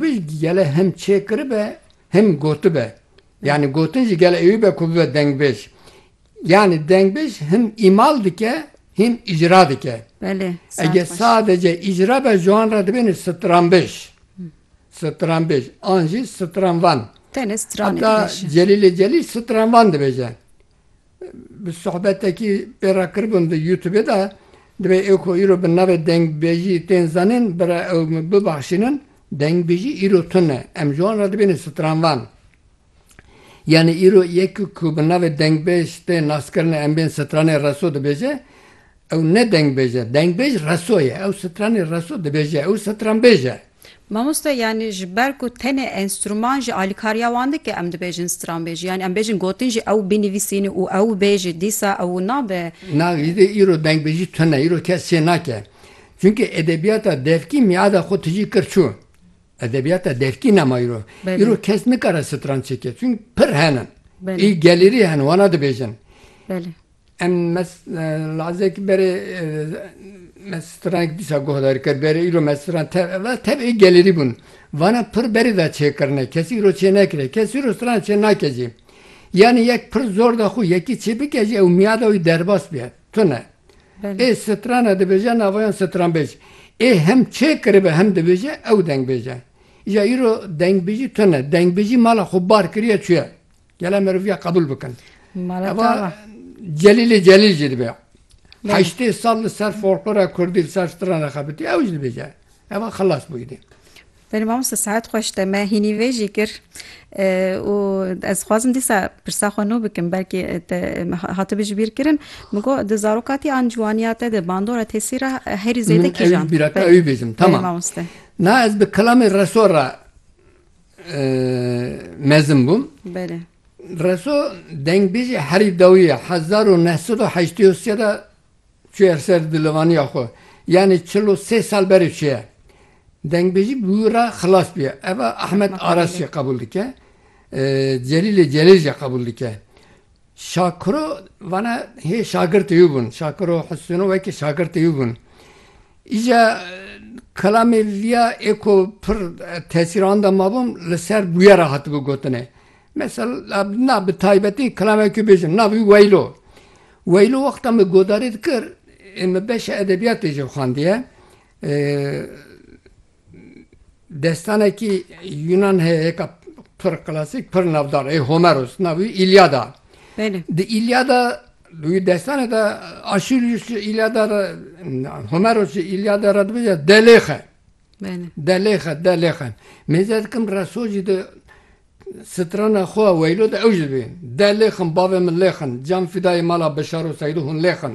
Pişt gele him çêkiribe him gotibe. Yanî gotin jî gele ewî be ku bibe dengbêj. Yanî dengbêj him îmal dike him îcra dike. Belê. Ege sadece îcra be ji wan re dibêne stranbêj. Stranbêj an jî stranvan. Tenê stran dibêje. Heta Celîlê Celîl stranvan dibêje. Bi sohbetekî pê re kiribûm di youtubê de, divê ew ku îro bi navê dengbêjî tên zanîn bira ew min bibaxşînin, dengbêjî îro tune, em ji wan re dibêne stranvan. Yanî îro yekî ku bi navê dengbêj tê naskirine em bên stranê reso dibêje, ew ne dengbêj e, dengbêj reso ye, ew stranê reso dibêje, ew stranbêj e. Mamoste yanî ji ber ku tenê enstrûman ji alîkariya wan dike em dibêjin stranbêjî yanî em bêjin gotin jî ew binivîsînî û ew bêjî dîsa ew nabe. Na îdê îro dengbêjî tune îro kes çê nake. Çunkî edebiyata devkî mîada xwe tijî kir çû. Edebiyata devkî nema îro. Îro kes nikare stranb çêke çunkî pir hene. Î gelêrî hene wana dibêjin. Em mes lazek bere mes strank dîsa guhdar kir bere îro mes stran te va tev ê gelerî bûn. Vana pir berê da çêkirine kesî îro çênekire kes îro stran çênake jî. Yanî yek pir zor da xwe yekî çêbike jî ew miyada wî derbas bîye. Tune. Ê strana dibêje navayan stranbêj. Ê hem çêkiribe hem dibêje ew dengbêje. Îja îro dengbêjî tune. Dengbêjî mala xwe bar kiriye çûye. Gele meriviya qebûl bikin. Eva Celîlê Celîl jî dibe. Heştê sal li ser folklora Kurdî li ser strana xebitî ew jî dibêje. Eva xilas bûyî dê. Berê mamoste saet xweş te me hînî vê jî kir û ez xwazim dîsa pirsa xwe nû bikim belkî te hatibi ji bîr kirin min got di zarokatî an ciwaniya te de bandora tesî re herî zêde kîjan bîra te wî bêjim tamam mamoste na ez bi kilamê reso re mezin bûm. Belê. Reso dengbêjê herî dawî ye hezar û neh sed û heştê û sê de çûye li ser dilivaniya xwe. Yanî çil û sê sal berê çûye. Dengbêjî bi wî re xilas bûye. Eva Ahmet Aras jî qebûl dike. Celîlê Celêl jî qebûl dike. Şakiro vane hê şagirtê wî bûn. Şakiro Husûno wekî şagirtê wî bûn. Îca kelamê vîya ê ku pir tesîr anda mabûm li ser bûyera hatibû gotinê. Mesela na bi taybetî kelameke wî bêjim nav wî Weylo. Weylo wexta min godarî dikir ê min beşa edebiyatê jî xwendiye. Destanekî Yunan heye yeka pir klasîk, pir navdar ê Homeros. Navê wî Îlyada. Di Îlyada wî destane de Aşîlyus ji Îlyada re Homeros ji Îlyada re dibêje delêxe. Delêxe delêxe. Mêze dikim reso jî di strana xwe ya weylo de ew jî dibê. Delêxin bavê min lêxin. Can fîdayê mala Bişar û Seydo hûn lêxin.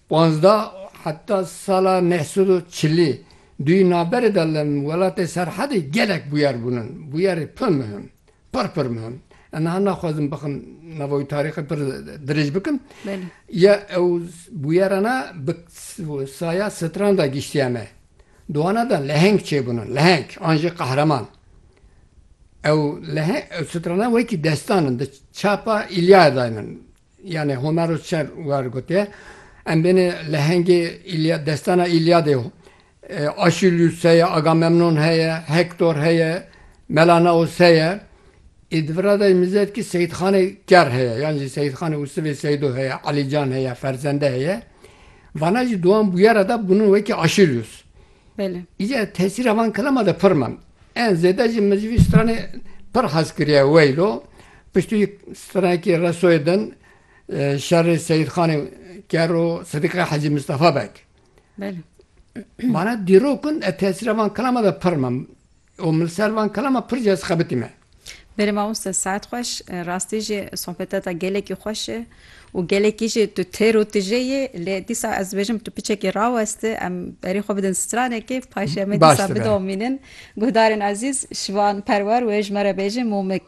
Panzdeh heta sala neh sed û çilî duyî navberê de li welatê Serhedê gelek bûyer bûn in. Bûyerê pir mihim, pir pir mihim. Ez niha naxwazim bixim nava wî tarîxê pir dirêj bikim. Ya ew bûyera ne bi saya stran de giştiye me. Di wana de leheng çêbûn in, leheng an jî qehreman. Ew leheng, ew strana wekî destan in. Di çapa Îlyayadayê min Yanê Homero çer war gotiye. Em bêne lehengê Îlyad, destana Îlyadê yo. Aşîlyus heye, Agamemnon heye, Hektor heye, Melanaos heye. Ê di vir ra de mizet ki Seyîdxanê Ker heye, yan jî Seyîdxanê û sivê Seyîdo heye, Elîcan heye, Ferzende heye. Vana jî di wan bûyera de bûnin wekî Aşîlyus. Belê. Îca tesîra van kelama de pir ma. En zêde jî min ji vî stranê pir hez kiriye weylo piştî wî stranekî resoyê din şerê Seyîdxanê Ker û Sidîqê Hecî Mistefa Beg. Belê. Vane dîrok in ez tesîra van kelama de pir ma. O min li ser van kelama pir cez xebitî me. Berê mamoste saet xweş. Rastî jî sohbeta te gelekî xweş e û gelekî jî tu têr û tije yî. Lê dîsa ez dibêjim tu piçekî rawestî. Em berî xwe bidin stranekê paşê em ê dîsa bidomînin. Guhdarên ezîz, şivan perwer wê ji me re bêjin Mûmik.